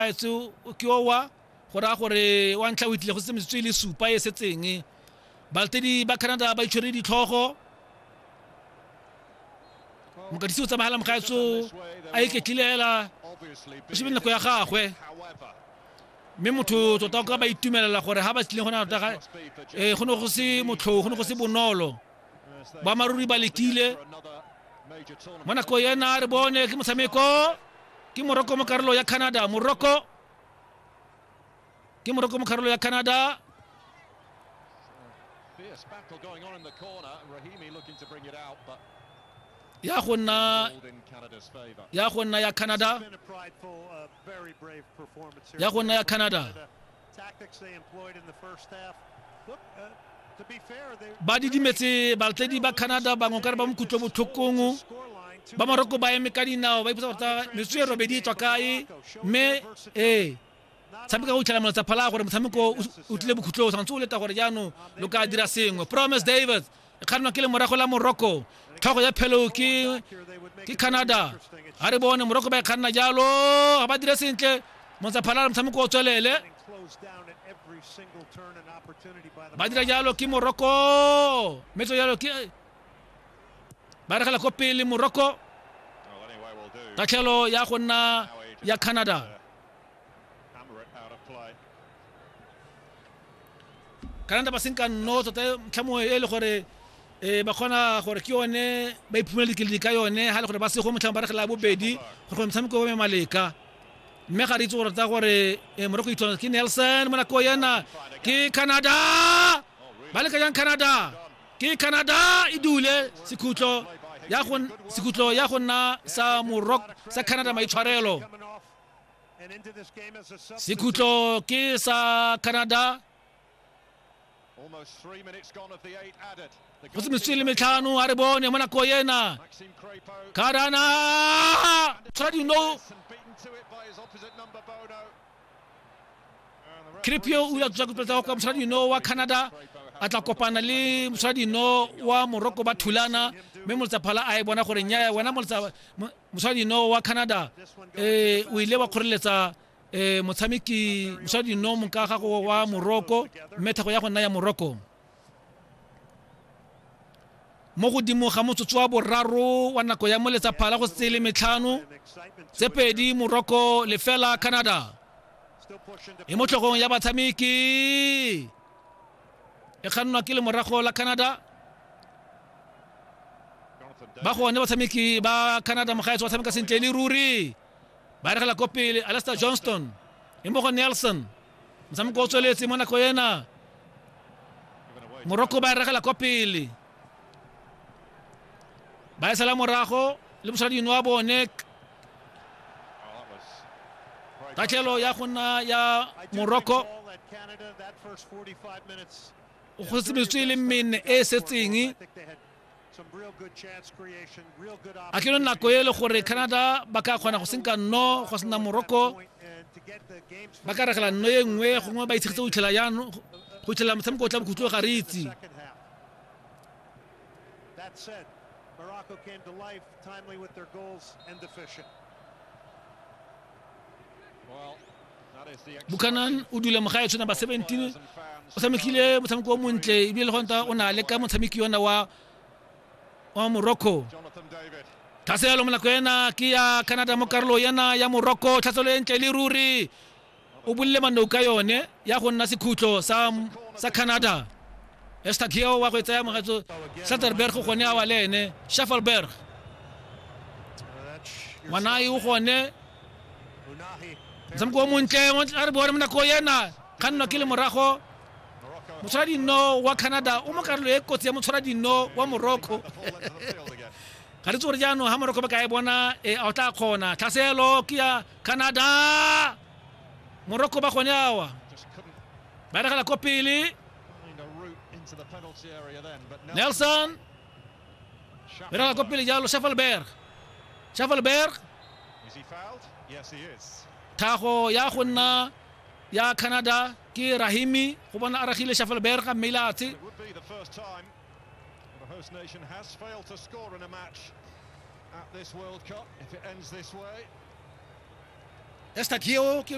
Etse ke owa go raya gore wa ntlha o itlile go se metsotso e le supa e setseng balatedi ba canada ba itshwere ditlhogo mokatisi o tsamagela mogaetso a iketlile hela o shebile nako ya gagwe mme motho tota o ka ba itumelela gore ga ba tlileng go na tota eh, go ne go se motlhong go ne go se bonolo boammaaruri ba letile mo nako ena re bone ke motshameko ke moroko mo karolo ya canada moroko ke moroko mo karolo ya canada ya go nna ya go nna ya canada ya go nna ya canada ba didimetse baltedi ba canada bangwe kare ba mokutlwe botlhokong ba morocco ba eme ka dinao ba ipotsa gorta metso e robedi e tswa kae mme ee tshameka go itlhela molatsa phala gore motshameko o tlile bokhutlong tshwanetse o leta gore jaanong lo ka dira sengwe promise david kganwa ke le morago la morocco tlhogo ya phelo ke ke canada ga re bone morocco ba e kganna jalo ga ba dire sentle montsaphalala motshameko o tswelele ba dira jalo ke morocco metso jalo ke ba regela ko pele morocco tatlhelo ya go nna ya canada kana nta ba se nka nno tota ntlha mongwe e le gore um ba kgona gore ke yone ba iphumela dikeledi ka yone ga le gore ba sego motlhang ba regela bobedi gore gore motshameko o me maleka mme ga re itse gore tsa gore um moroko itshwana ke nelson mo nako yena ke canada ba leka jang canada ke canada e dule sekhutlo ya go sekhutlo ya go nna sa morok sa canada maitshwarelo sekhutlo ke sa canada go se metswe le metlhano a re bone mo nako ena karana tshwara dino cripio o ya tswa go pletsa kwa mosadino wa canada a tla kopana le mosadino wa moroko ba thulana mme moletsaphala a e bona gore nyaya wena mosadino wa canada um o ile wa kgoreletsa um motshameki mosadino monka gago wa moroko mme thego ya go nna ya moroko mo godimo ga motsotso wa boraro wa nako ya moletsa phala go setse le metlhano tse pedi morocco lefela canada e mo tlhogong ya batshameki e kgannwa ke lemorago la canada ba gone batshameki ba canada mogaetso ba tshameka sentle le ruri ba regela ko pele alastair johnston e mo go nelson motshameko o tsweletse mo nako ena morocco ba e ragela kwa pele ba e sala morago le mosadino wa bone tatlhelo ya go nna ya morocco go tsemetswe le mene e e setseng a ke yone nako e le gore canada ba ka kgona go senka nno go sena morocco ba ka regela nno e nngwe gongwe ba itshegetse go itlhela yano go itlhela motshameko o tla bokhutlo ga re itse Morocco came to life timely with their goals and the fishing. Well, bukanan o dula mo gae tshwana ba 17 o tshamekile motshameko o montle ebile le gonta o na le ka motshameki yona wa wa morocco tlhase yalo monako ena ke ya canada mo karolo yena ya morocco tlhatselo e ntle le ruri o bolile mannou ka yone ya go nna sekhutlo sa sa canada estadio wa go e tsaya mogatso satterberg gone a wa le ene schaffelberg ngwana e o gone motshameko o montle a re bone mo nako ena kgannwa ke le morago motshwara dinno wa canada o mo karolo e kotsi ya motshwara dinno wa morocco ga re tse gore jaanong ga morocco ba ka e bona e a o tla kgona tlhaselo ke ya canada morocco ba gone awa ba regela ko pele nelson Mira la copa le jalo Schaffelberg. Schaffelberg. Thago ya go nna ya Canada ke Rahimi go bona Aragile Schaffelberg a mmelatse. The host nation has failed to score in a match at this World Cup if it ends this way. Esta Kio, que